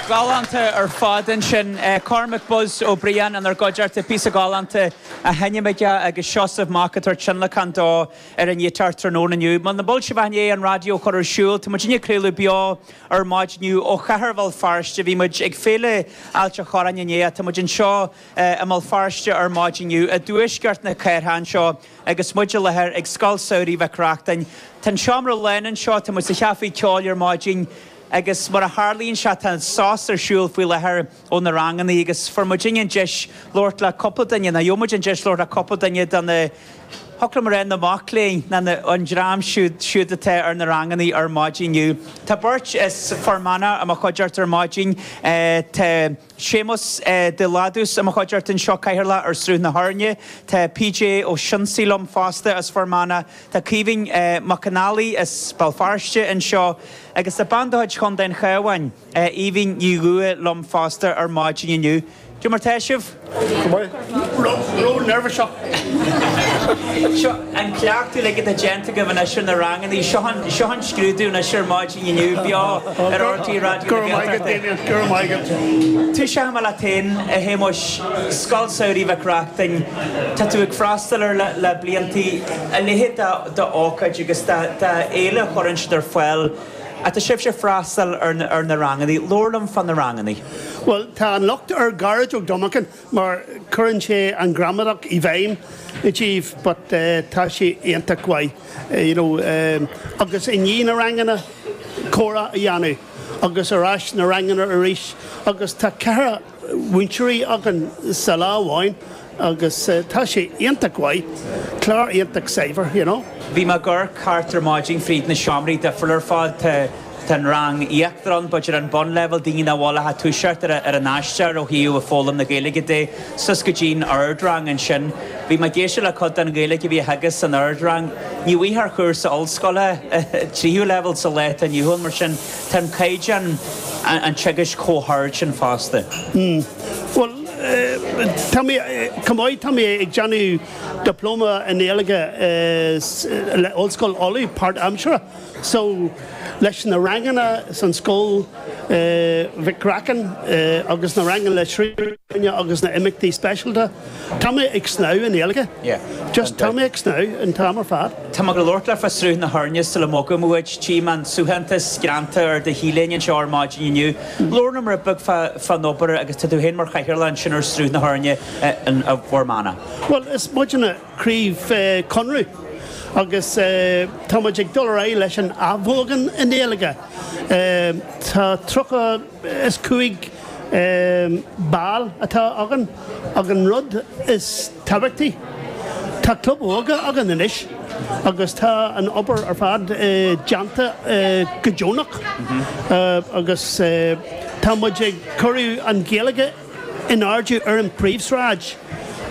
Galánta ar fad ansin. Cormac 'Buzz' Ó Briain inár gcuideachta píosa galánta a sheinnm aige agus Seosamh Mac ag tabhairt tionlacán dó ar an ngiotár tráthnóna inné. Muna bhfuil sibh ach i ndiaidh an raidió a chur ar siúl, tá muidinne ag craoladh beo ar maidin inniu ó Chathair Bhéal Feirste. Bhí muid ag Féile Ailte Choráin inné ach tá muid anseo i mBéal Feirste ar maidin inniu i dtuaisceart na cathrach anseo. Agus muid i láthair ag Scoil Samhraidh Mhic Reachtain, tá an seomra lán anseo, tá muid sa chaife ceoil ar maidin agus mar a tharlaíonn sé tá sos ar siúl faoi láthair ó na ranganna agus fuair muid an deis labhairt le cúpla duine, nó gheobhaimid an deis labhairt le cúpla duine de na, chóir a bheith mé a rá na mac léinn, ná na, an dream siúd, siúd atá ar na ranganna ar maidin. Tá beirt as Fear Manach i mo chuideachta ar maidin, tá. Séamus de Ládús i mo chuideachta anseo, Cathaoirleach ar Sruth na hÉirne. Tá PJ Ó Sionsaigh liom fosta as Fear Manach. Tá Caoimhín Mac an Fhailí as Béal Feirste anseo. Agus tá bean de chuid Chontae an Chabháin, Aoibhín Ní Dhúiche liom fosta ar maidin inniu. Cad é mar tá sibh? Ró-neirbhíseach! Seo, an cleachtadh like atá déanta agaibh anois ar na rangannaí, seo an, seo an scrúdú anois ar maidin inniu, beo ar RTÉ Raidió na Gaeltachta. Go raibh maith agat, Damien, go raibh maith agat. Tosóidh mé leat féin, a Shéamuis, Scoil Samhraidh Mhic Reachtain, tá tú ag freastal air le blianta, a leithéid d'ócáid agus d'fhéile a chuireann siad ar fáil, ach tá sibhse ag freastal ar na rangannaí, labhair liom fá na rangannaí. Bhuel, tá an lucht ar gairid ó Dhominican. mar cuireann sé an ghramadach i bhfeidhm i dtoibh but tá sé iontach mhaith you know agus i ndiaidh na ranganna, comhrá a dhéanamh agus ar ais na ranganna arís agus tá ceithre múinteoirí againn sa lá amháin agus tá sé iontach mhaith, clár iontach saibhir, you know. Bhí mé ag amharc thart ar maidin fríd na seomraí difriúla ar fáil. Tá an rang íochtarán, b'fhéidir an bunleibhéal, daoine a bhfuil ag toiseacht ar an aistear ó thaobh foghlaim na Gaeilge de, suas go dtí'n ardrang ansin. Bhí mé ag éisteacht le cuid den Ghaeilge a bhí á teagasc san ardrang. Ní bhfaighfeá ar chúrsa ollscoile, tríú leibhéal, sa lá atá inniu ann, mar sin tá an caighdeán an teagaisc chomh hard sin fosta. Bhuel, tá mé, chomh maith, tá mé ag déanamh Dioplóma i nGaeilge le Ollscoil Uladh, páirtaimseartha. so, leis na ranganna san Scoil Mhic Reachtain agus na ranganna le Sruth na hÉirne agus na himeachtaí speisialta, tá mé ag snámh i nGaeilge. Just, tá mé ag snámh an t-am ar fad. Tá mé ag labhairt leat fá Shruth na hÉirne sula mbogaim uait. Tchím an suaitheantas greanta ar do T-léine anseo ar maidin inniu. Labhair liom rud beag fán obair agus tá tú féin mar chathaoirleach ansin ar Sruth na hÉirne i bhFear Manach. Bhuel, is muidne. craobh Chonradh agus tá muid ag dul ar aghaidh leis an athbheochan Gaeilge. Tá tríocha is cúig ball atá againn ach an rud is tábhachtaí tá club óige againn anois agus tá an obair ar fad déanta go deonach agus tá muid ag cur an Ghaeilge in airde ar an bpríomhshráid,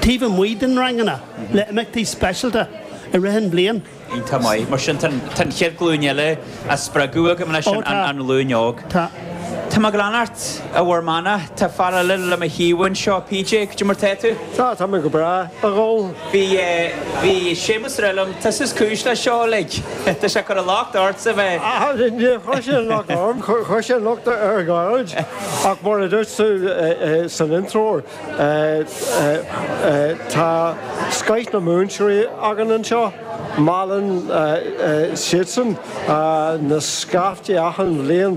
taobh amuigh den ranganna, le imeachtaí speisialta i rith an bhliain. Iontach maith. Mar sin, tá an chéad ghlúin eile á spreagadh agaibh leis an ghlúin óg. Tá muid ag leanacht ar bhur mana. Tá fear eile le mo thaobh anseo. PJ, caidé mar atá tú? Sea, tá mé go breá, a dhul. Bhí, bhí Séamus ag rá liom. Tusa is cúis leis seo uilig. Tá sé ag cur an locht ortsa bheith. Ach, níor chuir sé an locht orm, chuir sé an locht ar Ghaeilge. Ach mar a dúirt tú san intreoir, tá scoth na múinteoirí againn anseo, meallann siadsan na scaiftí achan bhliain.